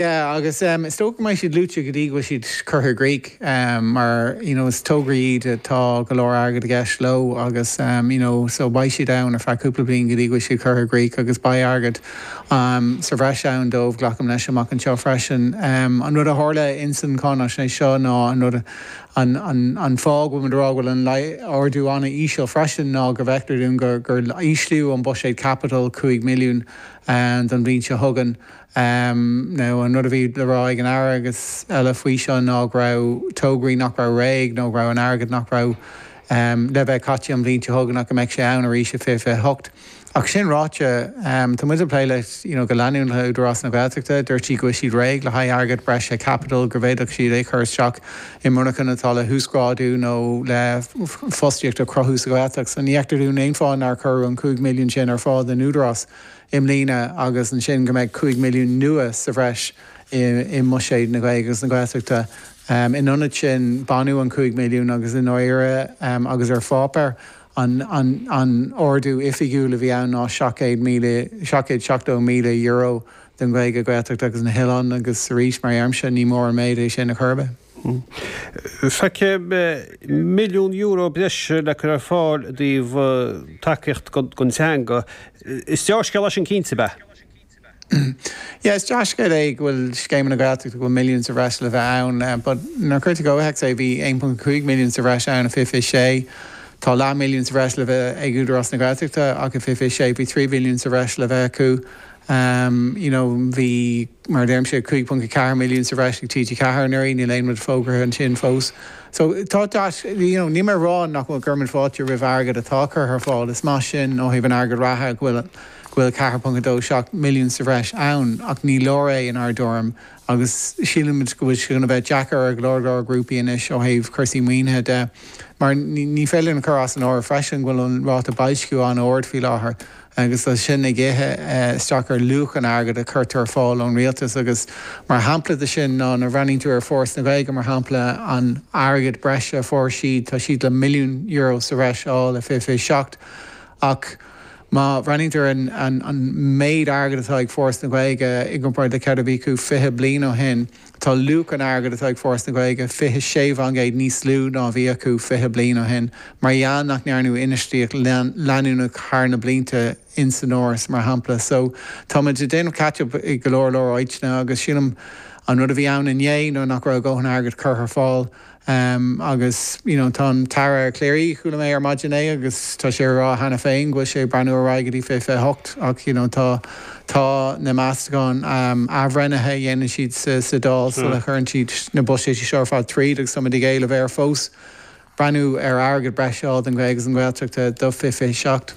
Yeah, agus is dócha go mbeidh siad luaite go dtí go bhfuil siad curtha i gcrích, mar you know is tograí iad atá go leor airgid i gceist leo agus you know so beidh siad ann ar feadh cúpla bliain go dtí go bhfuil siad curtha i gcrích agus beidh airgead sa bhreis ann dóibh, glacaim leis, amach anseo freisin. An rud a tharla ins an cháinaisnéis seo ná an rud, an, an, an fáth a bhfuil muid ag rá go bhfuil an t-ardú an-íseal freisin ná go bhfeictear dúinn gur, gur íslíodh an buiséad caipitil cúig mhilliún don bhliain seo chugainn. Am nó an rud a bhí le rá ag an Aire agus eile faoi seo ná go raibh tograí nach raibh réidh nó go raibh an t-airgead nach raibh le bheith caite an bhliain seo chugainn ach go mbeidh sé ann arís i 2028. Ach sin ráite, tá muid ag plé le you know go leanúnach le Údarás na Gaeltachta. Dúirt siad go bhfuil siad réidh le haghaidh airgead breise caipitil go bhféadfadh siad é chur isteach i monarchana atá le huasghrádú nó le fostaíocht a chruthú sa Ghaeltacht. So ní fheictear dúinn aon fáth nár cuireadh an 5 milliún sin ar fáil don Údarás. i mbliana agus ansin go mbeidh 5 milliún nua sa bhreis i mbuiséad na Gaeilge agus na Gaeltachta. In ionad sin, baineadh an 5 milliún agus i ndáiríre agus ar pháipéar an ardú oifigiúil a bhí ann ná €770 míle don Ghaeilge, Gaeltacht agus na hoileáin agus arís mar a deirimse ní mór an méid é sin ar chor ar bith. Feicim milliún euro breise le cur ar fáil i dtaobh tacaíocht don teanga. Is dea-scéala é sin cinnte, ab ea? Yeah, is dea-scéal é go bhfuil scéimeanna na Gaeltachta go bhfuil milliún sa bhreis le bheith ann, but nuair a cuirtear i gcomhthéacs é, bhí 1.5 milliún sa bhreis ann i fiche fiche sé, tá leath milliún sa bhreis le bheith ag Údarás na Gaeltachta ach i fiche fiche sé bhí 3 mhilliún sa bhreis le bheith acu. Um, you know, bhí, mar a deirimse, 5.4 milliún sa bhreis ag TG4 anuraidh, níl aon rud fógartha ansin fós. So, tá that, you know, níl mé ag rá nach gcuireann muid fáilte roimh airgead atá curtha ar fáil, is maith sin ó thaobh an airgead reatha go bhfuil, go bhfuil 4.27 milliún sa bhreis ann ach ní leor é, in ár dtuairim, agus sílimid go bhfuil sé chun a bheith deacair ag go leor leor grúpaí anois ó thaobh cúrsaí maoinithe de, mar ní féidir linn a chur as an áireamh freisin go bhfuil an ráta boilsciú an-ard faoi láthair agus tá sin ag ithe isteach ar luach an airgid a chuirtear ar fáil ón rialtas agus mar shampla de sin ná nuair a bhreathnaíonn tú ar Foras na Gaeilge mar shampla an airgead breise a fuair siad, tá siad le milliún euro sa bhreis a fháil i 2027 ach. Má bhreathnaítear ar an méid airgid atá ag Foras na Gaeilge i gcomparáid le céard a bhí acu fiche bliain ó shin, tá luach an airgid atá ag Foras na Gaeilge fiche sé fá gcéad níos lú ná a bhí acu fiche bliain ó shin mar gheall nach ndearnadh infheistíocht leanúnach thar na blianta in san Fhoras, mar shampla. So, tá muid ag déanamh catch-up i go leor leor áíteanna agus sílim an rud a bhí ann inné ná nach raibh a dhóthain airgid curtha ar fáil. Agus, you know, tá an tAire Calleary, chuala mé ar maidin é agus tá sé a rá cheana féin go bhfuil sé ag breathnú ar aghaidh go dtí 2028 ach, you know, tá, tá na Meastacháin athbhreithnithe a dhéanann siad sa, sa Dáil sula gcuireann siad na buiséisí seo ar fad tríd agus táimid ag éileamh air fós breathnú ar airgead breise a fháil don Ghaeilge agus don Ghaeltacht do 2027.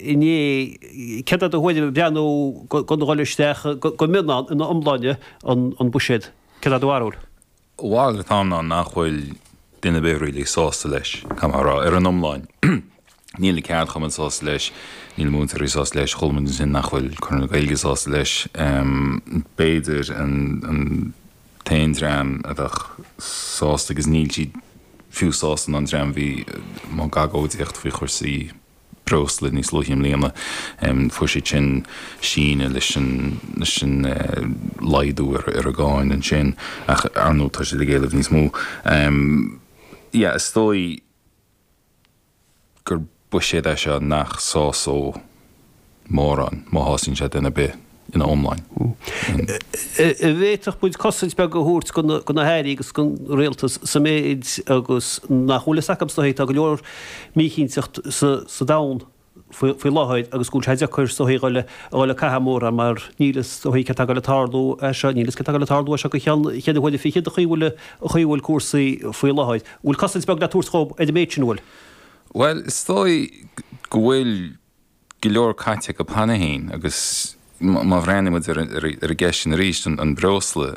inné, céard é do thuairim ag breathnú gan dhul isteach go mion ann ina iomláine, an buiséad, céard é do bharúil? Bhal, tá a fhios againn nach bhfuil duine ar bith really sásta leis, caithfidh mé a rá, ar an iomláin. Níl na ceardchumainn sásta leis, níl na múinteoirí sásta leis, chuala muid ansin nach bhfuil Conradh na Gaeilge sásta leis, b'fhéidir an t-aon dream a bheadh sásta agus níl siad fiú sásta ná an dream a bhí i mbun agóidíocht faoi chursaí, breosla níos luaithe i mbliana. Fuair siad sin síneadh leis an leis an laghdú ar ar an gcáin ansin ach ar ndóigh tá siad ag éileamh níos mó. Yeah is dóigh gur buiséad é seo nach sásódh. mórán, má shásaíonn sé duine ar bith ina iomláine. An bhféadfadh muid cosaint beag a thabhairt do na hAirí agus don Rialtas sa méid agus nach bhfuil fhios acu is dóichí. Tá go leor míchinteacht sa domhan faoi láthair agus go bhfuil sé deacair is dóichí a dhul ag caitheamh mórán mar níl fhios is dóichí céard tá ag dul a tarlú as seo, níl fhios céard tá ag dul a tarlú as seo go ceann cheithre huaire fichead an chaoi bhfuil chaoi bhfuil cúrsaí faoi láthair. An bhfuil cosaint beag le tabhairt dhóibh ar an méid sin, an bhfuil? Bhuel, is dóigh go bhfuil. go leor caite acu an babhta seo féin agus má bhreathnaímid ar an gceist sin arís, an breosla,